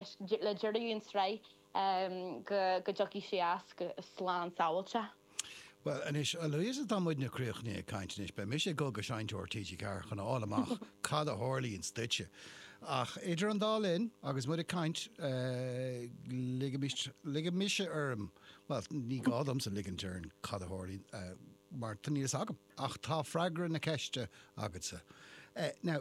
le deireadh an sraith go dtiocfaidh sí as slán sábhailte. Bhuel anois, a Louisa, tá muidne críochnaithe ag caint anois. Beidh mise ag dul go dtí seinnteoir TG4 chun a fháil amach cad a tharlaíonns duitse. Ach idir an dá linn, agus muid ag caint, ligfidh, ligfidh mise orm, bhuel, ní gá domsa ligint orm cad a tharlaíonn mar níl fhios agam. Ach tá freagra na ceiste agatsa. Now.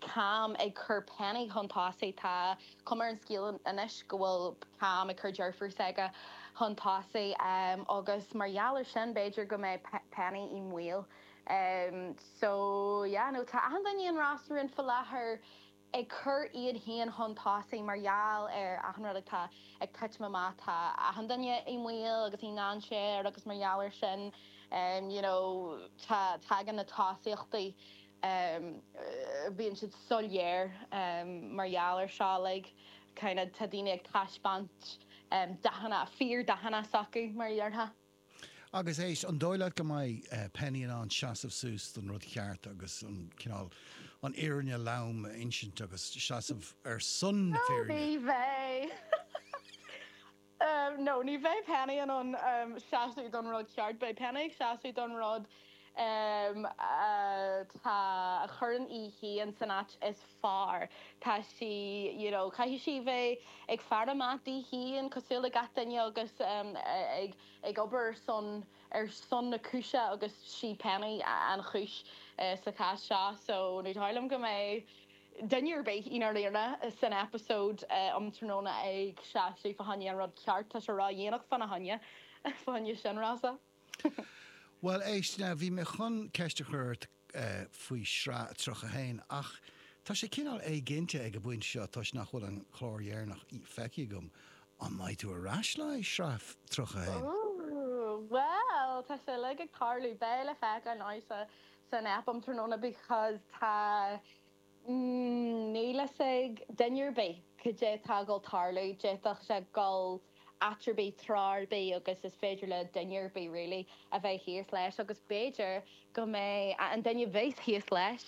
Cam ag cur Penny chun tosaigh. Tá cuma ar an scéal anois go bhfuil Cam ag cur deirfiúr s'aige chun tosaigh agus mar gheall ar sin b'fhéidir go mbeidh Penny i mbaol. So, yeah, no, tá achan duine i Ros na Rún fá láthair ag cur iad féin chun tosaigh mar gheall ar achan rud atá ag titim amach. Tá achan duine i mbaol agus i ndáinséar agus mar gheall ar sin, you know, tá, tagann na tosaíochtaí. em bíonn siad soiléir em mar gheall ar seo like kind of tá daoine ag taispeáint em dathanna fíor dathanna s'acu mar a dhearfá. Agus éist, an dóigh leat go mbeidh eh Penny in ann seasamh suas don rud cheart agus an cineál an fhírinne lom a insint agus seasamh ar son na fírinne? Ó ní bheidh! Em no, ní bheidh Penny in ann, em, seasamh don rud ceart. Beidh Penny ag seasamh don rud, em, atá, a chuireann í féin san áit is fearr. Tá sí, you know, caithfidh sí bheith ag faire amach di féin cosúil le gach duine agus, em, ag, ag obair ar son, ar son na cúise agus is í Penny an chúis, eh, sa chás seo. So, ní dóigh liom go mbeidh. Duine ar bith i ndáiríre san eipeasóid um tráthnóna ag seasamh fá choinne an rud ceart, tá sé ródhéanach fána choinne, fá choinne sin anois. Bhuel éist, now bhí mé chun ceist a chur ort faoi sraith 31 ach tá sé cineál éiginnte ag an bpointe seo toisc nach bhfuil an clár deireanach feicthe agam, an mbeidh tú ar ais le haghaidh sraith 31? Ooh, bhuel tá sé uilig ag tarlú, beidh le feiceáil now sa san aip um tráthnóna because tá, níl fhios ag duine ar bith cad é atá ag dul tarlú, d'fhéadfadh sé dul áit ar bith, treo ar bith agus is féidir le duine ar bith really a bheith thíos leis agus b'fhéidir go mbeidh an duine a bheas thíos leis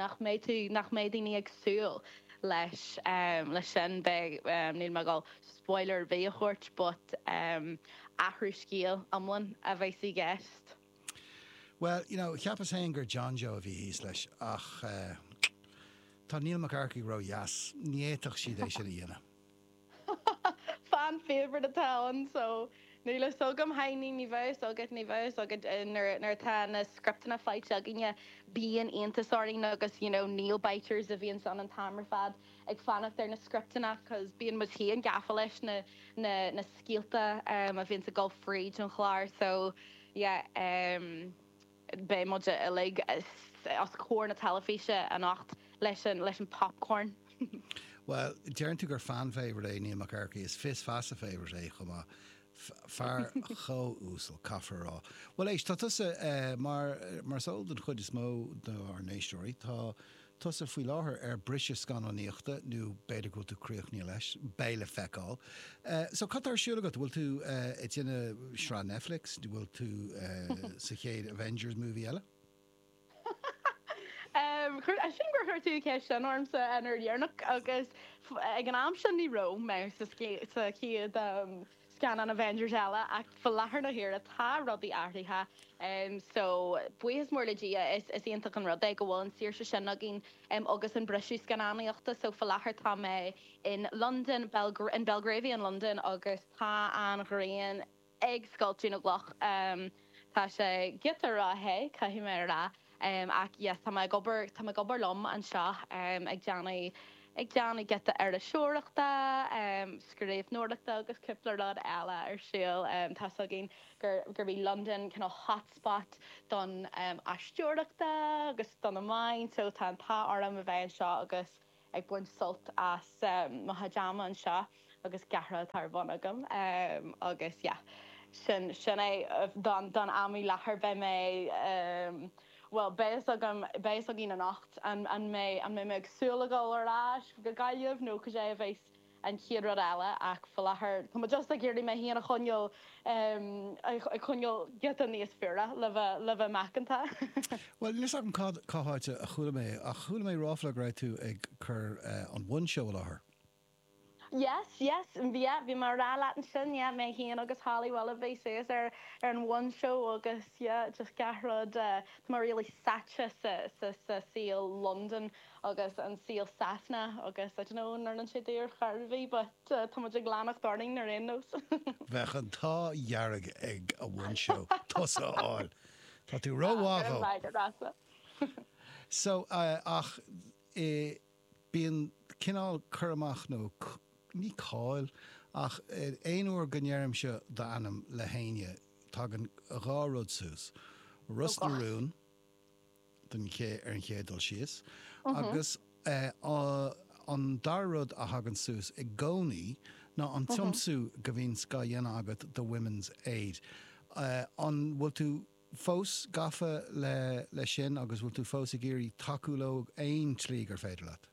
nach mbeidh tú, nach mbeidh daoine ag súil leis leis sin. Beidh, níl mé ag dul spoiler ar bith a thabhairt but athrú scéil iomlán a bheas i gceist. Bhuel, you know, cheapas fhéin gur John Joe a bhí thíos leis, ach eh, tá Niall Mac Eachmharcaigh ródheas, ní fhéadfadh siad é sin a dhéanamh. Fan favorite atá ann, so níl fhios agam, a thaiscidh, ní bheidh fhios agat, ní bheidh fhios agat nuair, nuair atá na scripteanna faighte againne, bíonn iontas orainn agus, you know, nail biters a bhíonns ann an t-am ar fad. ag fanacht ar na scripteanna cause bíonn muid féin gafa leis na scéalta a bhíonns ag dul fríd an chlár so yeah beidh muid uilig os comhair na teilifíse anocht leis an popcorn. Bhuel, deireann tú gur fan favorite é Neil Mac Earcaigh, is fios feasa favorite é chomh maith. Fear chomh uasal, caithfear a rá. Bhuel éist, tá tusa mar is eol don chuid is mó dár n-éisteoirí, tá Tusa faoi láthair ar briseadh scannánaíochta, nó b'fhéidir go bhfuil tú críochnaithe leis, beidh le feiceáil. So cad atá ar siúl agat? Bhfuil tú ag déanamh sraith Netflix? Bhfuil tú sa chéad Avengers movie eile? Sílim gur chuir tú an cheist sin ormsa an uair dheireanach agus ag an am, so ní raibh mé sa chéad. scannán Avengers eile ach fa láthair na huaire tá rudaí athraithe so buíochas mór le Dia is iontach an rud é go bhfuil an saoirse sin againn agus an briseadh scannánaíochta so fa láthair tá mé in Londain in Belgravia in Londain agus tá an ghrian ag scoilteadh na gcloch. Tá sé giota rothe, caithfidh mé a rá, ach yes, tá mé ag obair, tá mé ag obair liom anseo, ag déanamh, ag déanamh giota iriseoireachta, scríbhneoireachta agus cúpla rud eile ar siúl. Tá's againn gurb í Londain kind of hotspot don aisteoireachta agus do na meáin, so tá an t-ádh orm a bheith anseo agus, ag baint sult as mo chuid ama anseo agus giota oibre atá ar bun agam agus yeah sin sin é don don am i láthair beidh mé bhuel beidh fhios agam beidh fhios againn anocht an an mbeidh an mbeidh mé ag súil a dhul ar ais go Gaillimh nó goidé a bheas an chéad rud eile ach faoi láthair tá mé just ag iarraidh mé féin a choinneáil, em, a choinneáil giota níos fuaire le bheith, le bheith macánta. Bhuel, níl 's agam cad, cá háit a chuala mé é ach chuala mé ráfla go raibh tú ag cur, eh, an One Show i láthair. Yes, yes, yeah, bhí mé a' rá leat ansin, yeah, mé féin agus Holly Willoughby, suas ar, ar an One Show agus, yeah, just gach rud, eh, tá mé really sáite sa, sa, sa saol Londain. agus an saol Sasana agus I don't know an oireann sé d'fhear Ghaoth Dobhair but tá muid ag leanacht orainn ar aon nós. Bheadh an t-ádh dearg ag an One Show tusa a fháil. Tá tú ró mhaith dó. Go raibh maith agat Rossa. So ach i bíonn cineál cur amach nó ní cáil ach aon uair go ndeirimse d'ainm le héinne tagann dhá rud suas, Ros na Rún den ché ar an chéad dul síos agus an dara rud a thagann suas i gcónaí ná an tiomsú go mbíonns á dhéanamh agat do Women's Aid. An bhfuil tú fós gafa leis sin agus bhfuil tú fós ag iarraidh tacú leo aon tslí gur féidir leat?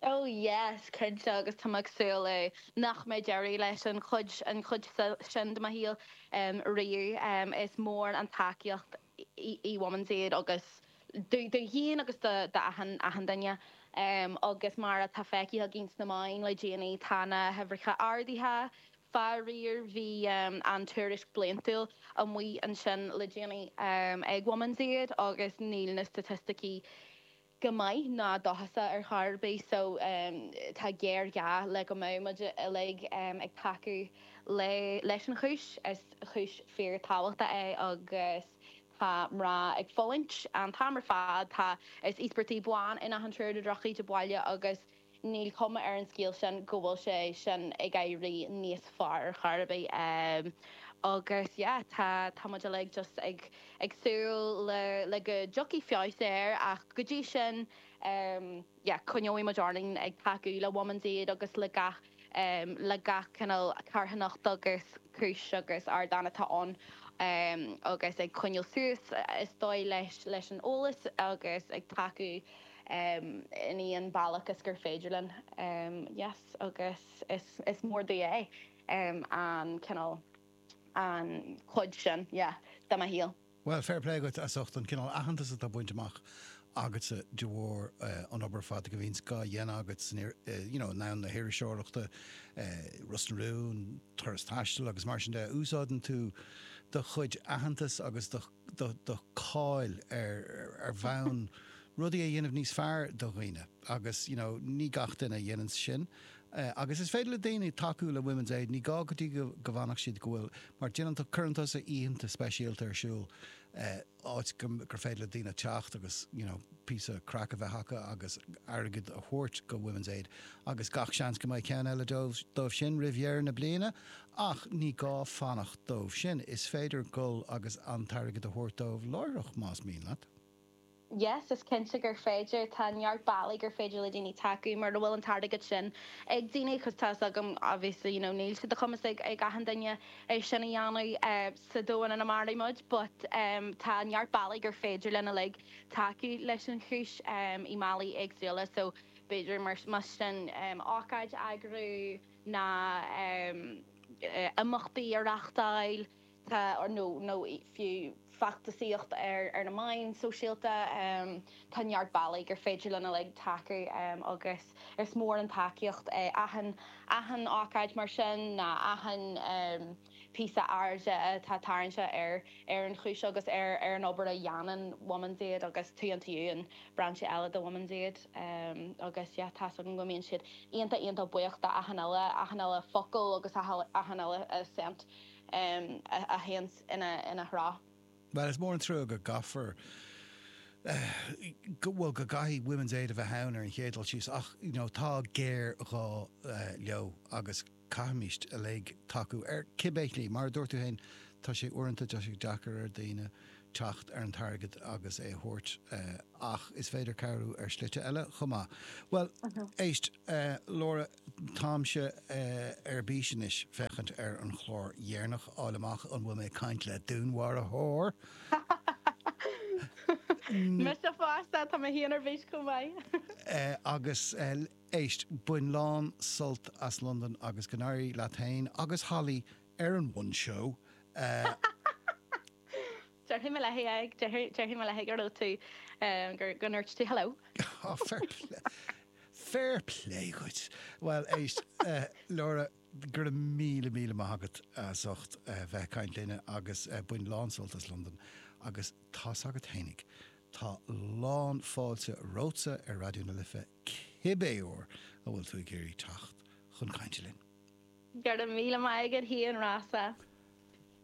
Ó yes, cinnte agus tá mé ag súil nach mbeidh deireadh leis an chuid, an chuid sin de mo shaol riamh. Is mór an tacaíocht í Women's Aid agus domh féin agus do do achan, achan duine. Agus mar atá feicthe againn sna meáin le déanaí tá na huimhreacha ardaithe. Faraor bhí tuairisc bliantúil amuigh ansin le déanaí ag Women's Aid agus níl na staitisticí, go maith ná dóchasach ar chor ar bith so tá géarghá le go mbeadh muid uilig ag tacú le leis an chúis. Is cúis fíorthábhachtach é agus tá mná ag fulaingt an t-am ar fad. Tá is íospartaigh ban in achan triúr de dhrochíde baile agus Níl cuma ar an scéal sin go bhfuil sé sin ag éirí níos fearr ar chor ar bith agus yeah tá tá muid uilig just ag ag súil le le go dtiocfaidh feabhas air ach go dtí sin yeah coinneoidh muid orainn ag tacú le Women's Aid agus le gach le gach cineál carthanacht agus cúis agus ardán atá ann agus ag coinneáil suas is dóigh leis leis an eolas agus ag tacú in aon bhealach gur féidir linn. yes agus is is mór domh é. an cineál. an chuid sin yeah de mo shaol. Bhuel, fair play dhuit as ucht an cineál aitheantas atá bainte amach agatsa de bharr an obair ar fad go bhíonns dhá dhéanamh agat san you know i ndomhan na hiriseoireachta, Ros na Rún, Turas Taistil agus mar sin de. Úsáideann tú do chuid aitheantas agus do. do cháil ar mhaithe le rudaí a dhéanamh níos fearr do dhaoine agus you know ní gach duine a dhéananns sin agus is féidir le daoine tacú le Women's Aid ní gá go bhfanfadh siad go bhfuil mar déanann tú cuireann tusa oícheanta speisialta ar siúl áit gur féidir le daoine teacht agus you know píosa craic a bheith acu agus airgead a thabhairt go Women's Aid agus gach seans go mbeidh ceann eile dóibh sin roimh dheireadh na bliana Ach ní gá fanacht dóibh sin, is féidir gul agus an t-airgead a thabhairt dóibh láithreach más mian leat. Yes, is cinnte gur féidir. Tá neart bealaí gur féidir le daoine tacú mura bhfuil an t-airgead sin ag daoine agus tá 's agam obviously you know níl sé de chumas ag achan duine é sin a dhéanamh sa domhan ina mairimid muid but tá neart bealaí gur féidir linn uilig tacú leis an chúis i mbealaí éagsúla so b'fhéidir más sin ócáid a eagrú nó imeachtaí a reachtáil nó fiú feachtasaíocht ar na meáin sóisialta. Tá neart bealaí gur féidir linn uilig tacú agus is mór an tacaíocht é achan ócáid mar sin ná achan. píosa airde atá tarraingthe ar ar an chúis agus ar ar an obair a dhéanann Women's Aid agus Too Into You, an brainse eile de Women's Aid agus yeah tá's agam go mbíonn siad iontach iontach buíoch do achan uile achan uile focal agus achan uile cent a théanns ina ina threo. Bhuel is mór an trua go gcaithfear eh go bhuel go gcaithfidh Women's Aid a bheith ann ar an chéad dul síos ach you know tá géarghá leo agus, caithfimíst uilig tacú, ar cibé shlí. Mar a dúirt tú féin, tá sé uaireanta deacair ar dhaoine teacht ar an t-airgead agus é a thabhairt, ach is féidir cabhrú ar shlite eile chomh maith. Bhuel, éist, Laura, táimse ar bís anois féachaint ar an chlár dheireanach, fháil amach an bhfuil mé ag caint le dúnmharfóir! Mise fosta, tá mé féin ar bís chomh maith! Agus. Éist, bain lán sult as Londain agus go n-éirí leat féin agus Holly ar an One Show! Déarfaidh mé léi, déarfaidh mé léi go raibh tú, go ndúirt tú hello. Fair play, fair play dhuit! Bhuel éist, Laura, go raibh míle míle maith agat as ucht bheith ag caint linn agus bain lán sult as Londain agus tá's agat fhéinig, tá lán fáilte romhatsa ar Raidió na Life. Cibé uair a bhfuil tú ag iarraidh teacht chun cainte linn. Go raibh míle maith agat Hugh and Rossa.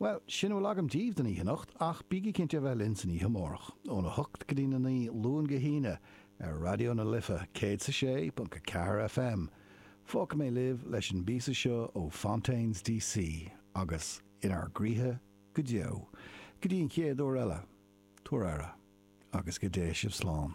Bhuel, sin a bhfuil agam díbh don oíche anocht ach bígí cinnte a bheith linn san oíche amárach, óna hocht go dtí a naoi, Luan go hAoine, ar Raidió na Life, céad 's a sé ponc a ceathair FM. Fágfaidh mé libh leis an bpíosa seo ó Fontaines D.C. agus In ár gCroíthe go Deo. Go dtí an chéad uair eile, tabhair aire agus go dté sibh slán.